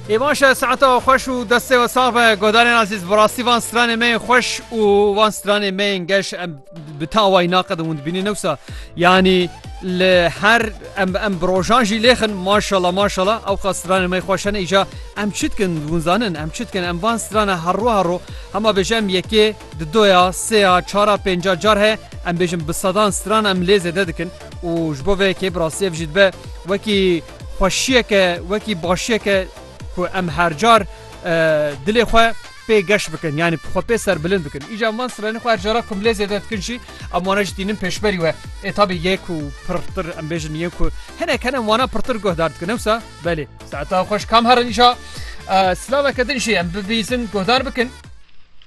Ê baş e, siheta we xweş û destê we sax be guhdarên azîz. Bi rastî van stranên me yên xweş û van stranên me yên geş em bi ta wayî naqedin hûn dibînin newsa yanî li her em em bi rojan jî lêxin maşala maşala ew qas stranên me xweş hene îca em çi dikin hûn zanin em çi dikin em van strana herro herro hema bêje em yekê Di do ya, sê ya, çar a, pênc a car heye em bêjin bi sedan stran em lê zêde dikin û ji bo vê yekê bi rastî ev jî dibe wekî xweşiyeke, wekî başiyeke ku em her car dilê xwe pê geş bikin yanî xwe pê serbilind bikin. Îcar em van stranên xwe her cara ku em lê zêde dikin jî em wana jî tînin pêşberî we. Ê tabî yên ku pirtir em bêjin yên ku hinek hene em wana pirtir guhdar dikin ne wisa? Belê. Saeta xweş kam herin îcar silaveke din jî em bibîzin guhdar bikin.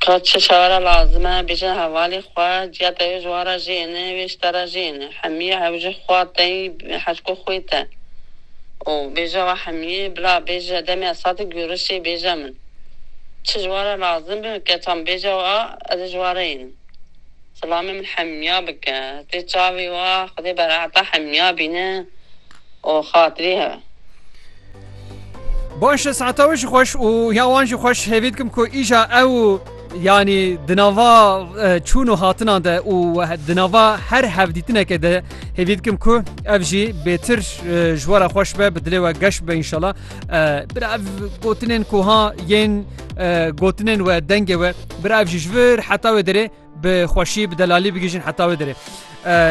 Ka çi çare lazim e, bêje hevalê xwe, ciya te ji wa re jê ne, wê ji te re jê ne. Hemî ew ji xwa tey hevko xwê te û bêje wa hemî bila bêje demê esatê gurişê bêje min. Çi ji wa re lazim be keçan bêje wa ez ji wa re yê ne. Silamê min hemîya bike. Tê çavê wa xwedê bereheta hemîya bîne û xatirî hebe. Baş e saeta wê jî xweş û ya wan jî xweş hêvî dikim ku îja ew yanî di nava çûn û hatinan de û di nava her hevdîtineke de hêvî dikim ku ev jî bêtir ji we re xweş be bi dilê we geş be înşala bira ev gotinên kuha yên gotinên we dengê we bira ev jî ji vir heta wê derê Bi xweşî, bi delalî bigihîjin heta wê derê.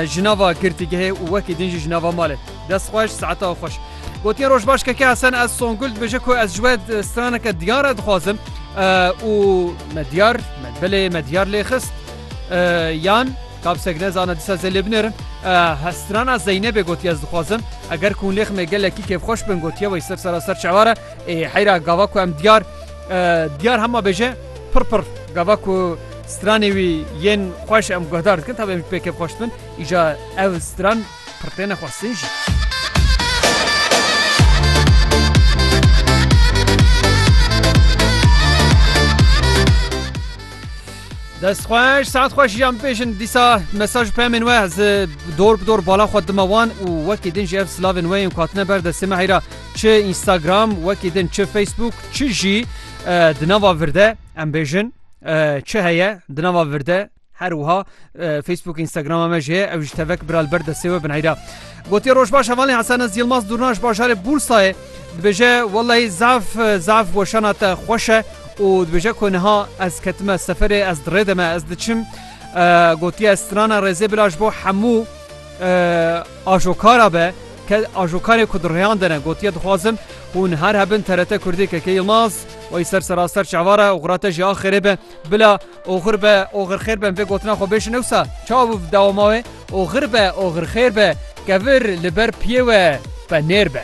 Ji nava girtîgehê û wekî din jî ji nava malê. Dest xweş, saeta we xweş. Gotiye roj baş keke Hesen ez Songul dibêje ku ez ji we straneke diyan re dixwazim û me diyar me belê me diyar lê xist yan kapsek ne zana disa zê lê binêrin hestrana Zeynebê gotiye ez dixwazim eger ku lêx me gelekî kêfxweş bin gotiye wey ser sera ser çeware ê heyra gava ku em diyar diyar hema bêje Pir pir gava ku stranê wî yên xweş em guhdar dikin tabi em jî pê kêf xweş dibin îja ev stran pir têne xwestin jî. Dest xweş saet xweş jî em bêjin dîsa mesaj pemên we ez dor bi dor bala xwe dima wan û wekî din jî ev silavên we yên ku hatine ber destê me heyra çi Instagram wekî din çi Facebook çi jî Di nava vir de em bêjin çi heye di nava vir de her wiha Facebook Instagrama me jê ew ji tevek bira li ber destê we bineyra. Gotiye roj baş hevalê Hesanes Yilmaz Durna ji bajarê Bursayê dibêje wellahî zaf zaf weşana te xweş e û dibêje ku niha ez ketime seferê ez dirê deme ez diçim gotiye strana rêzê bila ji bo hemû Ajokara be ke ajokarê ku di rêyan de ne gotiye dixwazim hûn her hebin TRT Kurdî KK Yilmaz wayî ser seraster çawa re oxira te jî a xêrê be bila oxir be oxir xêr be min vê gotina xwe bêjin ewsa çawa bû dewama wê oxir be oxir xêr be kevir li ber piyê we be nêr be.